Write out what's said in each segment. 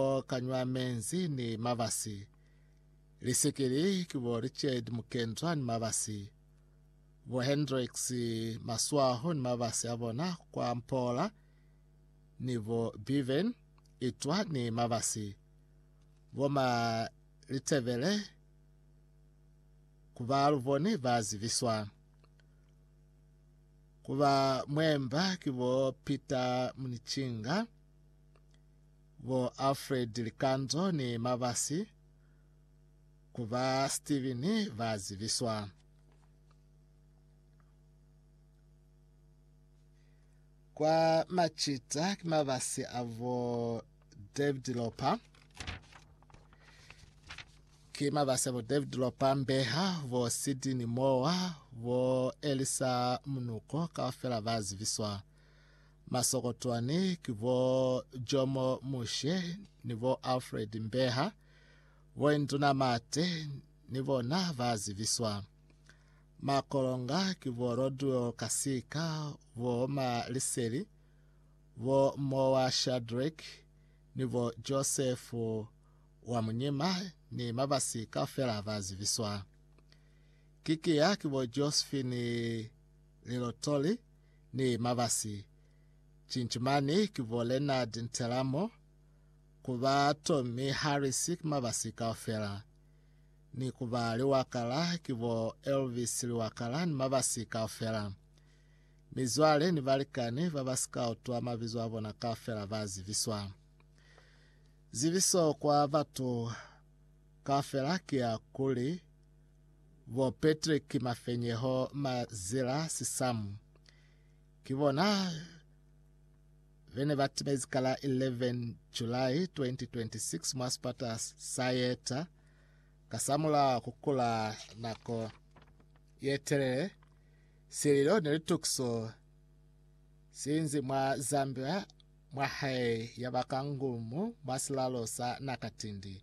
bo Kanywa Menzi ni Mabasi, Lisikili ki bo Richard Mukendzwa ni Mabasi, bo Hendricks Maswaho ni Mabasi a bona kwa Mpola, ni bo Beaven Itwa ni Mabasi, bo Ma Litebele ku ba lu bone ba zibiswa. Ku ba mwemba ki bo Peter Munichinga, bo Alfred Likanzo ni Mabasi ku ba Steven ba zibiswa. Kwa Machita ki Mabasi a bo David Lopa ki Mabasi a bo David Lopa Mbeha bo Sidini Moa bo Elisa Munuko kaufela ba zibiswa. Masokotwani ki bo Jomo Mushe ni bo Alfred Mbeha, bo Induna Mate ni bona ba zibiswa. Makolonga ki bo Rodwell Kasika, bo Ma Liseli, bo Mowa Shadrick ni bo Joseph wa Munyima ni Mabasi kaufela ba zibiswa. Kikia ki bo Josephine Lilotoli, ni mabasi, Cinci mani ki bo Leonard Ntelamo, ku ba Tommy Harris ki mabasi kaufela, ni ku ba Liwakala ki bo Elvis Liwakala ni mabasi kaufela. Mizwale ni balikani ba ba si ka utwa mabizo a bona kaufela ba ziviswa. Ziviso kwa batu kaufela ki ya kuli, Bo Patrick Mafenyeho Mazela Sisamu ki bona bene ba timezi ka la 11 July 2026 mwa sipata sa Yeta kasamula kukula nako yetelele. Sililo ni litukiso siinzi mwa Zambia mwa hae yaba ka ngumu mwa silalo sa Nakatindi.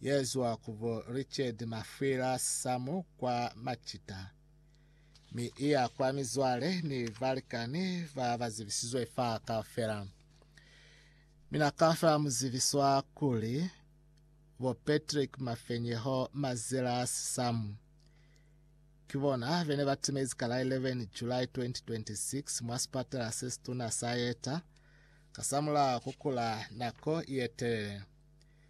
Yezwa ku bo Richard Mafwila Samu kwa Macita, mi iya kwa mizwale ni balikani ba ba zibisizwe fa kaufela. Mina kaufela mu zibiswa kuli bo Patrick Mafenyeho Mazelas Samu. Ki bona bene ba timezi ka la 11 July 2026 mwa sipatela se situna sa Yeta kasamulaho ku kula nako ye telele.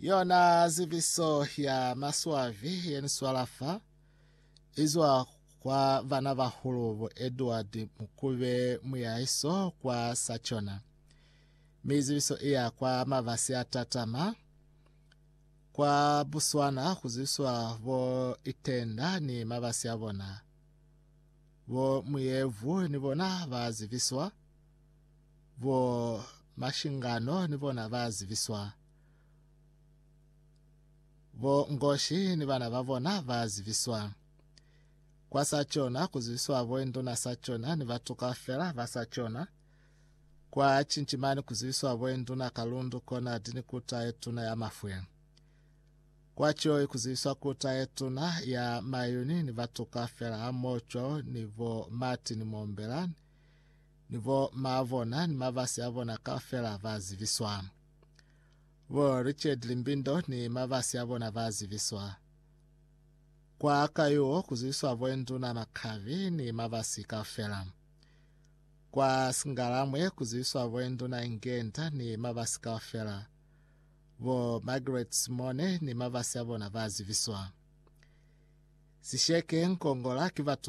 Yona ziviso ya maswavi yeniswala fa izwa kwa vana bahulu bo Edward Mukube Muyaiso kwa Sachona. Mi ziviso iya kwa mabasi a tatama kwa Botswana kuziswa bo itenda ni mabasi a bona. Bo Muyevu ni bona ba ziviswa. Bo mashingano ni bona ba zibiswa. Bo ngoshi ni bana ba bona ba zibiswa. Kwa sa cona ku zibiswa bo induna sa cona ni batu kaufela ba sa cona. Kwa cincimani ku zibiswa bo induna kalundu kona dini kuta ye tuna ya mafwe. Kwa cioi ku zibiswa kuta ye tuna ya mayuni ni batu kaufela ha mocwa ni bo mati ni mombela ni bo maa bona ni mabasi a bona kaufela ba zibiswa. Bo Richard Limbindo ni mabasi a bona ba zibiswa. Kwa kayuo ku zibiswa bo Nduna Makhavi ni mabasi kaufela. Kwa Singalamwe ku zibiswa bo Nduna Ingenda ni mabasi kaufela. Bo Margaret Simone ni mabasi a bona ba zibiswa. Sisheke Nkongola ki batu